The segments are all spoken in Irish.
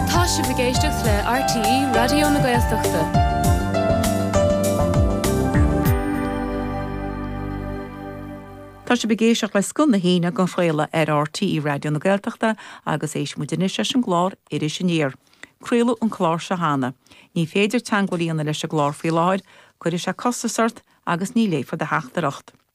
Tá sibh ag éisteacht le RTÉ Raidió na Gaeltachta. Tá sibh ag éisteacht le Scoth na hAoine á chraoladh ar RTÉ Raidió na Gaeltachta agus éistfidh muid anois leis an gclár Iris Aniar. Craoladh an clár seo cheana. Ní féidir teagmháil a dhéanamh leis an gclár faoi láthair, cuirfidh sé costas ort agus ní léifear do theachtaireacht.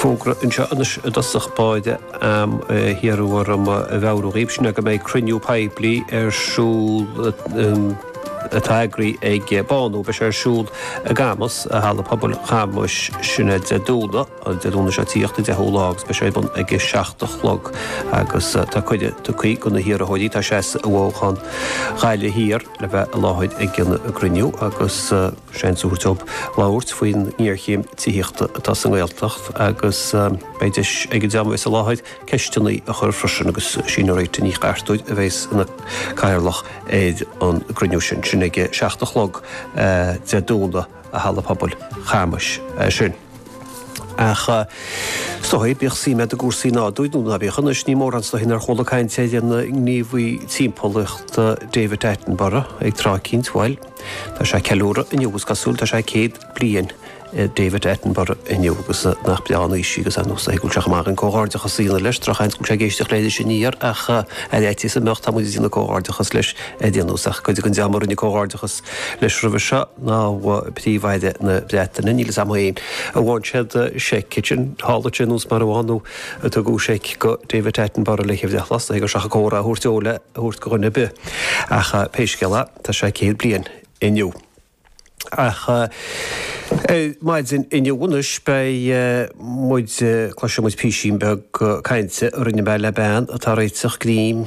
Fógra anseo anois i dtosach ba mhaith liom a mheabhrú dhaoibh sin é go mbeidh cruinniú poiblí ar siúl atá eagraithe ag Bánú. Beidh sé ar siúl i gCamus, Halla Pobail Chamuis sin Dé Domhnaigh, an Dé Domhnaigh seo ag tíocht, an deichiú lá agus beidh sé ar bun ag a seacht a chlog agus tá cuireadh tugthaí do na hiarrthóirí atá seasta i bhfothoghchán Ghaillimh Thiar le bheith i láthair ag an gcruinniú agus Seans a thabhairt dóibh labhairt faoin ngéarchéim tithíochta atá sa nGaeltacht agus beidh deis ag an dream a bheidh i láthair ceisteanna a chur freisin agus sí Máire Rita Ní Chartúir a bheidh ina cathaoirleach ar an gcruinniú sin. Sin ag a seacht a chlog, Dé Domhnaigh, i Halla Pobail Chamuis sin. Ach is dóigh, bíodh suim a'd i gcúrsaí nádúir nó ná bíodh, anois ní mórán is dóigh nár chuala caint ar an ngníomhaí timpeallachta David Attenborough ag tráth eicínt, bhail, tá sé ag ceiliúradh inniu, is cosúil, tá sé céad bliain ag David Attenborough inniu agus nach breá an aois í agus anois is dóigh go bhfuil sé chomh maith dhúinn comhghairdeachas a dhéanamh leis, drochsheans go bhfuil sé ag éisteacht le hIris Aniar ach ar fhaitíos go mbeadh, tá muid ag déanamh comhghairdeachas leis ar aon nós ach cuid den dream a rinne comhghairdeachas leis roimhe seo ná príomh-aire na Breataine, níl 'fhios a'm fhéin a mbíonn siad seic, sin tharla sé nós mar a bhíonn nó ar tugadh seic do David Attenborough le hIfreann lasnaigh agus seachas comhrá a thabhairt dó le thabhairt do dhuine ar bith ach pé scéal é tá sé céad bliain inniu. Ach ar maidin inniu anois beidh muid, cloisfidh muid písín beag cainte a rinne mé le bean atá ag réiteach grinn,